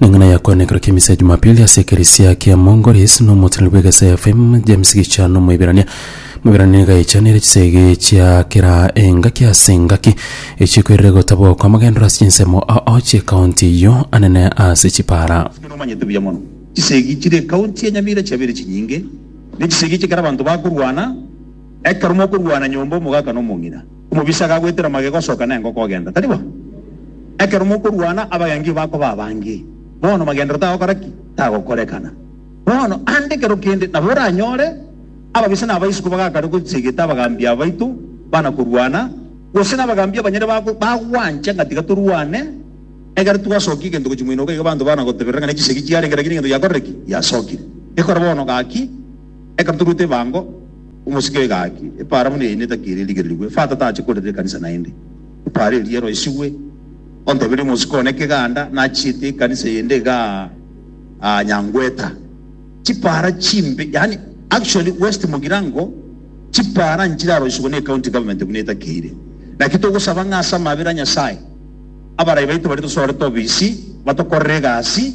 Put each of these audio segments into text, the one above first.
Neng'ina ya koena ekero kia misa ya Jumapili ase ekerisia kia Mongolis, na omoteneneri bw'egesa ya FM James Gichano Omoiberania. Omoiberania nigo aechanire chisege chia kera engaki ase engaki echia koirera gotabwa okwa amagendero ase chinsemo ao chi'ekaunti eyio anene ase chipara. Inwe nomanyete buya mono chisegi chire ekaunti ya Nyamira chiabeire chinyinge, ne chisegi echi ekero abanto bakorwana, ekero mokorwana nyomba omogaka nomong'ina, Omobisa gagoetera magega osoka na engoko ogenda, tari bo? Ekero mokorwana, abagengi bakoba abange. Bono magenderero tagokora ki? Tagokorekana. Bono ande ekero kende nabo oranyore ababisa na abaisuku bagakare gochegeta abagambi abaito bana korwana, gose na abagambi abanyene bago bagwancha ng'a tiga torwane, egere twasokia egento gochia moino obo, iga abanto bana goteberera ng'a ne chisegi chiarenge, rakini egento giakorire ki? Giasokire. Gekore bono gaki. Ekero toruete ebango, omosike egaki epaara buna eyio netaki eria erigererigwe. Fata tache korerera ekanisa naende epaara eria eroisigwe. Onteberie omosike one keganda nachiete ekanisa eyende iga aa Nyangweta. Chipaara chimbe yaani actually West Mugirango chipaara nchiraroisigwe ne county government buna etakeire. Naki togosaba ng'a ase amabera a Nyasaye abarai baito baria tosorete obisi batokorere egasi.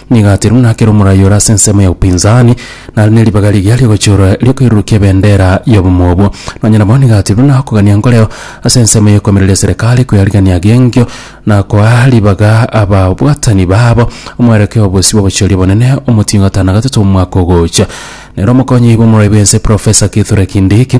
Nigo Atirmu nakera omoraia ore ase ensemo ya Upinzani, nare neribaga rigiya riogochiora riokoirurukia ebendera y'obomo obwo. Nonya nabo nigo Atirmu nakogania nkoreo ase ensemo y'okoemereria eserekari kweyarigia g'enkio na koa ribaga ababwatani babo omwerekeo obosio bw'obochiori obonene omotingo atano na gatato omwaka ogocha. Nere omokonyi oibo omorai bw'ense Professor Kithure Kindiki,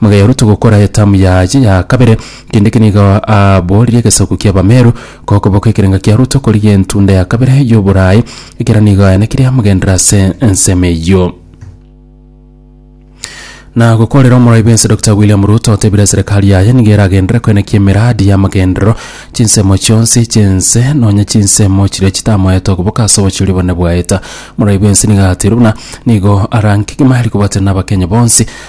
Magayaro togokora etamu yaye ya kabere, kende ki nigo aboorire egesaku ki'Abameru, gokoboko ekerenga kiaro tokorigia entunda ya kabere y'oboraai, ekero nigo aenekire amogenderere ase ensemo eyio. Na gokorera omorai bw'ense Doctor William Ruto otebire eserekari yaye nigo eragenderere koenekia emeradi y'amagenderero chinsemo chionsi chi'ense nonya chinsemo chiria chitamoete okoboka ase obochori obonene bwaeta. Omorai bw'ense nigo ateirwe buna nigo ara nkegima eri kobatera n'Abakenya bonsi,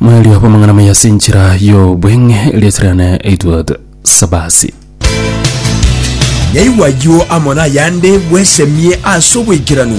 Mwerio bw'amang'ana maya ase enchera y'obweng'e riasererane Edward Sabasi. Yaigwa ayio amo nayande bwesemie ase oboikeranu.